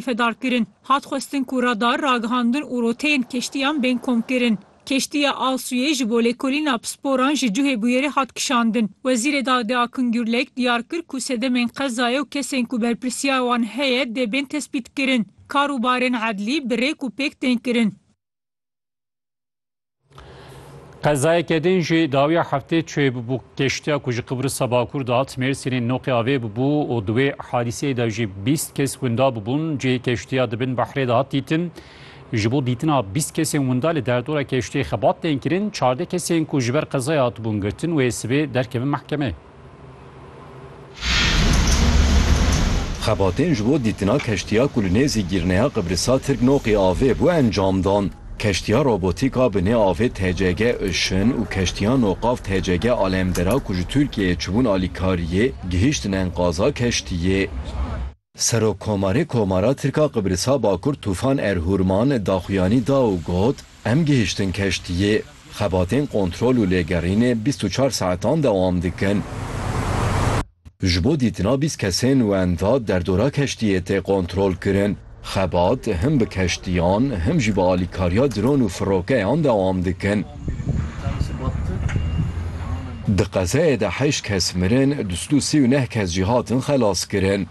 Fedar kirin. Hat xwestin ku radar, ragihandin û roteyên keştiyan bên komkirin. Keştiya Al Suyê ji bo lêkolîna pisporan ji cihê bûyerê hat kişandin. Wezîrê Dadê Akın Gürlek diyar kir ku sedemên qezayê û kesên ku berpirsiyar wan heye dê bên tespîtkirin. Kar û barên edlî bi rêk û pêk tên kirin. Qezayeke din jî dawiya heftê çê bû keştiya ku ji Qibrisa Bakur dihat Mêrsînê noqê avê bû û di wê hadîseyê de jî bîst kes winda bûbûn. Cihê keştiya di bin behrê de hat dîtin. Ji bo dîtina bîst kesên winda li derdora keştiyê xebat tên kirin. Çardeh kesên ku ji ber qezayê hatibûn girtin wê sibê derkevin mehkemeyê. Xebatên ji bo dîtina keştiya ku li nêzî gîrneya Qibrisa Tirk Noqi avê bû encam dan. Keştiya robotîk a bi nê avê TCG Ocean û keştiya noqav TCG Alemdera ku ji Tirkiyeyê çibûn alîkariyê, gihîştin enqaza keştiyê. Serokkomarê Komara Tirk a Qibrisa Bakur Tufan Erhurman daxuyanî da û got, Em gihiştin keştiyê. Xebatên kontrol û lêgerînê bîst û çar saetan dewam dikin. Ji bo dîtina bîst kesên wenda derdora keştiyê tê kontrolkirin. Xebat him bi keştiyan him jî bi alîkariya dron û firokeyan dewam dikin. Di qezayê de heşt kes mirin, du sed û sî û neh kes jî hatin xelaskirin.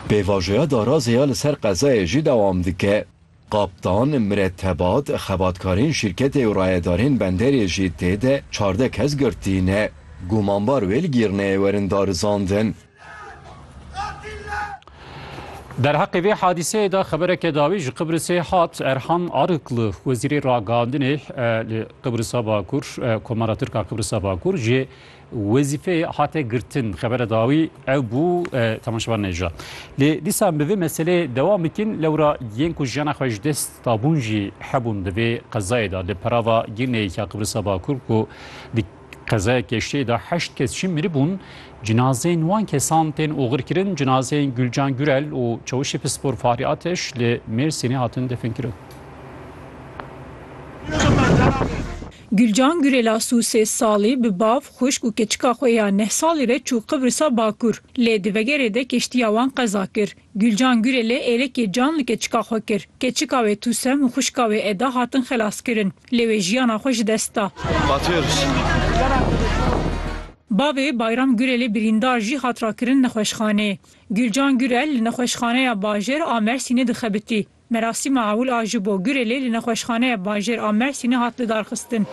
Pêvajoya darazê ya li ser qezayê jî dewam dike. Kaptan, miretebat, xebatkarên şîrketê û rayedarên benderê jî tê de çardeh kes girtî ne. Gumanbar wê li Gîrneyê werin darizandin. Derheqê vê hadîseyê de xebereke dawî ji Qibrisê hat Erhan Arıklı, Wezîrê Ragihandinê li Qibrisa Bakur, Komara Tirka Qibrisa Bakur ji wezîfeyê hate girtin. Xebere dawî ew bû temaşevan neja. Lê dîsa bi vê meseleyê dewam bikin lewra yên ku jiyana xwe ji dest dabûn jî hebûn di vê qezayê de li perava girneyê ya Qibrisa Bakur ku Qezaya Keştê de heşt kes jî miribûn, cinazeyên wan kesan tên oxirkirin, cinazeyên Gulcan Gurel û Çewişê Pispor Fahri Ateş li Mêrsînê hatin definkirin. Gulcan Gurel a si û sê salî bi bav, xwişk û keçika xwe ya neh salî re çû Qibrisa Bakur, lê di vegerê de keştiya wan qeza kir. Gulcan Gurelê êrekê can li keçika xwe kir. Keçika wê Tûsem û xwişka wê Eda hatin xelaskirin. Lê wê jiyana xwe ji dest da. Bavê Bayram Gurelê birîndar jî hat rakirin nexweşxaneyê. Gulcan Gurel li nexweşxaneya bajêr a Mersînê dixebitî. Merasîma ewil a ji bo Gurelê li nexweşxaneya bajêr a Mersînê hat lidarxistin.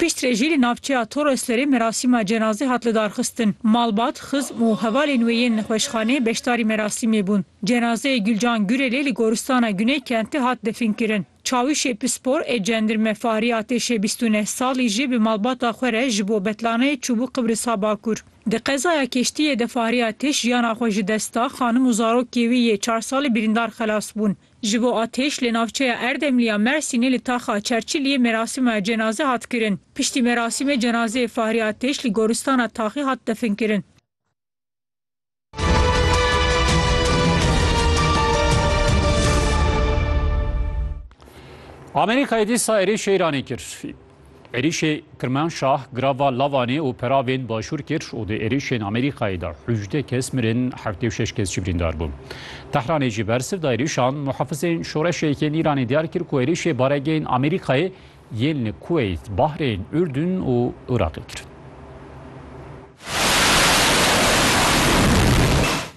Piştre jî li navçeya Toroslerê merasîma cenazê hat lidarxistin. Malbat, xizm û hevalên wê yên nexweşxaneyê beşdarî merasîmê bûn. Cenazeyê Gulcan Gurelê li goristana Guney Kentê hat definkirin. Çawişê Pispor ê Cendirme Farî Atêşê bîst û neh salî jî bi malbata xwe re ji bo betlaneyê çûbû Qibrisa Bakur. Di qezaya keştiyê de Fariya Têş jiyana xwe ji dest da, xanim û zarokê wî yê çar salî birîndar xelas bûn. Ji bo a Têş li navçeya Erdemlî ya Mersînê li taxa Çerçiliyê merasîma cenaze hat kirin. Piştî merasîmê cenazeyê Fariya Têş li goristana Taxî hat definkirin. Amerîkayê dîsa êrişê Îranê kir. Êrişê Kirmanşah grava Lavanê û Peravên Başûr kir û di êrişên Amerîkayê de hûjdeh kes mirin, heftê û şeş kes jî birîndar bûn. Tehranê jî bersiv da êrişan. Muhafizên Şoreşê Yekên Îranê diyar kir ku êrişê baregehên Amerîkayê yên li Kuweyt, Bahreyn, Urdun û Iraqê kirin.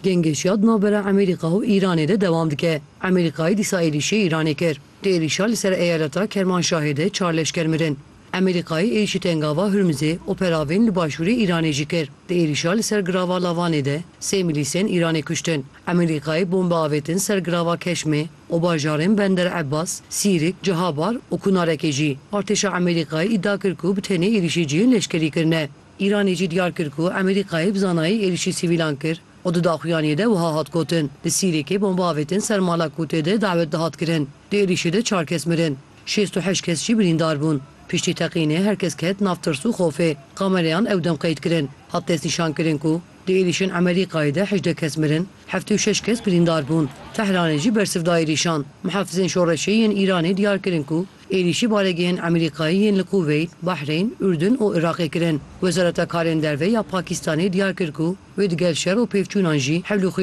Gengeşiya di navbera Amerîka û Îranê de dewam dike. Amerîkayê dîsa êrişê Îranê kir. Êrîşa li ser eyaleta Kermanşahê de çar leşker mirin. Amerîkayê êrîşî Tengava Hurmizê û peravîn li başûrê Îranê jî kir. Di êrîşa li ser girava Lavanê de sê milîsên Îranê kuştin. Amerîkayê bombe avêtin ser girava Keşmê û bajarên Bender Ebas, Sîrik, Cihabar û Kunarekê jî. Artêşa Amerîkayê îdia kir ku bi tenê êrîşê cihên leşkerî kirine. Îranê jî diyar kir ku Amerîkayê bi zanayî êrîşî sivîlan kir. Û di daxuyaniyê de wiha hat gotin, Di Sîrêkê bomba avêtin ser mala ku tê de dawet dihat kirin, di êrîşê de çar kes mirin, şêst û heşt kes jî birîndar bûn. Piştî teqînê her kes ket nav tirs û xofê. Kamereyan ew dem qeyd kirin. Hat destnîşankirin ku di êrîşên Emerîkayê de hejdeh kes mirin, heftê û şeş kes birîndar bûn. Tehranê jî bersiv da êrîşan. Mihafizên Şoreşê yên Îranê diyar kirin ku Êrîşî balegehên Amerîkayî yên li Kuveyt, Bahreyn, Urdun û Iraqê kirin. Wezareta Karên Derve ya Pakîstanê diyar kir ku wê digel şer û pêvçûnan jî hewlûxwî